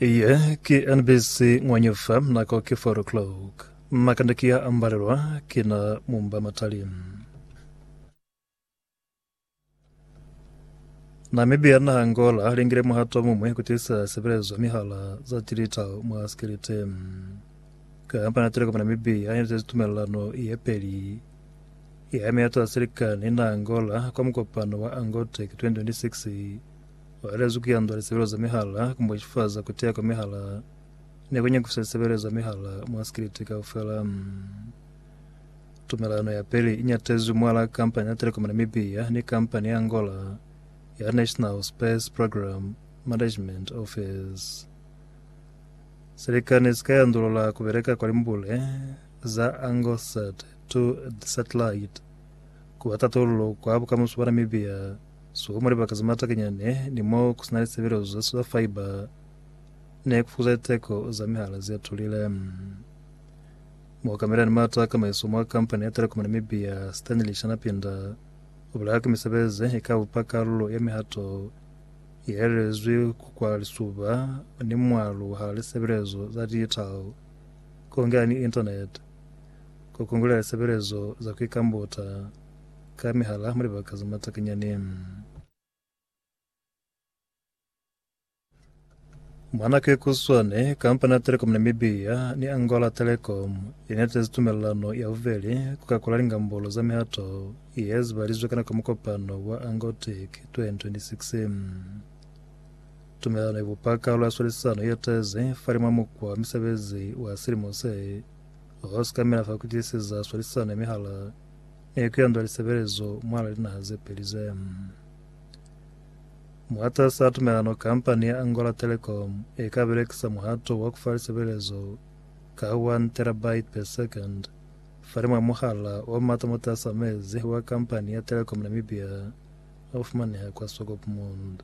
Iye ki NBC ng'wanyu fa nako ki 4 o'clock. Makande ki ya ambalelwa ki na mumba matali. Namibia na Angola lingile muhato mumwe kutisa sebelezo mihala za digital mwa sikilite. Kampani ya Telecom Namibia inetezi tumelelano ye peli ya meto ya silikani na Angola kwa mukopano wa Angotec 2026 Uelezwi ku yanda lisebelo za mihala ku mbochifaza kutea kwa mihala ni ku nyakufisa lisebelo za mihala mwa sikiliti kaufela. Tumelano ya peli inyatezwi mwala kampani ya Telecom Namibia ni kampani ya Angola ya National Space Program Management Office. Silikani sika yandulula kubeleka kwa limbule za Angosat 2 satellite kuba tatululo kwa bukamuso bwa Namibia Suka mwa libaka za mata kenyani ni mo ku si na lisebelezo za solar fibre ne ku fokuza liteko za mihala ze tulile. Mo kamela ni mata a kamaiso mwa kampani ya Telecom Namibia, Stanley Shanapinda, u bulela ka misebezi ze i ka bupa kalulo ya mihato ye elelezwi ku kwa lisuba ni mwalo hala lisebelezo za digital, ku ngela ni internet, ku kungulela lisebelezo za ku ikambuta, Ka mihala mwa libaka ze matakanyani. Mwa nako ye kuswane, kampani ya Telecom Namibia ni Angola Telecom inetezi tumelelano ya bubeli ku kakula lingambolo za mihato ye zibalizwe ka nako ya mukopano wa Angotec 2026. Tumelelano ibupa kalu ya swalisano yetezi falimwa mukwa wa misebezi wa silimo se, ho sikamela fa kutisiza swalisano ya mihala Ee, ku yanda lisebelezo mwala linaha ze peli ze. Mwatas'a tumelano, kampani ya Angola Telecom e ka belekisa muhato wa ku fa lisebelezo ka 1 terabyte per second falimw'a muhala o mata mwatas'a mezi wa kampani ya Telecom Namibia o fumaneha kwa Swakopmund.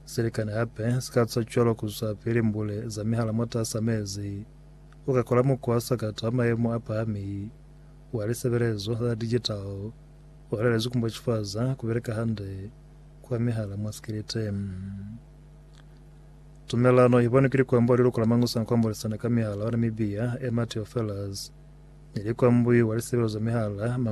Silikani hape si ka ca cwalo ku zwapili mbule za mihala mwatas'a mezi u ka kola mukwa wa sakata wa mayemo a pahami wa lisebelezo za digital o lalezwi ku mbochifaza ku beleka hande kwa mihala mwa sikiliti. Tumelano i bonwi ki likwambo wa liluko la Mangusana kwa Mbolisana ka Mihala wa Namibia, Emma Teofelus, ni likwambwi wa lisebelo za mihala, Mangusana.